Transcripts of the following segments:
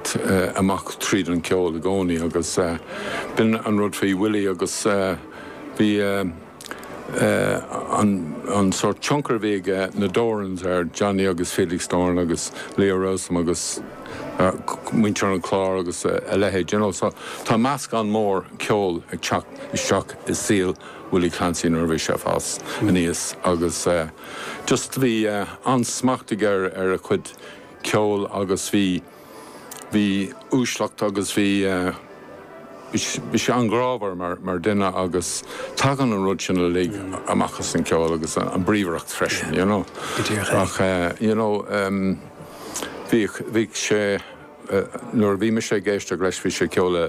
t amach tríd an gceol i gcónaí agus b'in an rud faoi Willie agus bhí an sórt tionchar a bhí ag na Dorans ar Johnny agus Felix Doran agus Leo Rowsome agus muintir an Chláir agus a leithéid, you know. So tá meascán mór ceoil ag teacht isteach i saol Willie Clancy nuair a bhí sé ag fás aníos agus just bhí an-smacht aige ar a chuid ceoil agus bhí, bhí uaisleacht agus bhí, bhí sé an-ghrámhar mar, mar dhuine agus tagann an rud sin uilig amach as an ceol agus an bríomhaireacht freisin, you know. Go díreach. Ach you know, bhíodh, bhíodh sé, nuair a bhí mise ag éisteacht leis bhí sé ag ceol le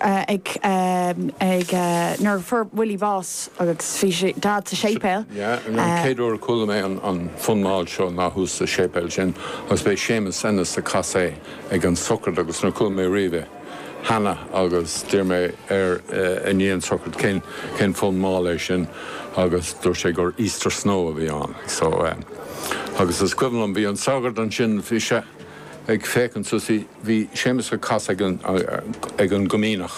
ag, ag, nuair a fuair Willie bás agus bhí Dad sa séipéal. Yeah, an chéad uair a chuala mé an, an fonn mall seo ná thuas sa séipéal sin agus b'é Séamus Ennis a chas é ag an sochraid agus níor chuala mé riamh é cheana agus d'iarr mé air i ndiaidh an tsochraid cén, cén fonn mall é sin agus dúirt sé gur Easter Snow a bhí ann. So, agus is cuimhin liom, bhí an sagart ansin, bhí sé. ag féachaint suas, bhí, bhí Séamus ag casadh ag an, ag an gComaoineach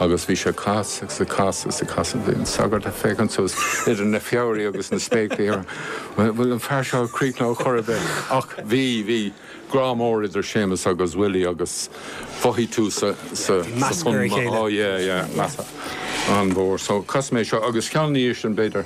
agus bhí sé ag casadh agus ag casadh agus ag casadh, bhí an sagart ag féachaint suas idir na fabhraí agus na spéaclaí air, an bhfuil an fear seo ag críochnú chor ar bith? Ach bhí, bhí grá mór idir Séamus agus Willie agus mhothaigh tú sa, sa, sa bhfonn, oh yeah, yeah, meas an-mhór. So casfaidh mé seo agus ceann ina dhiaidh sin b'fhéidir.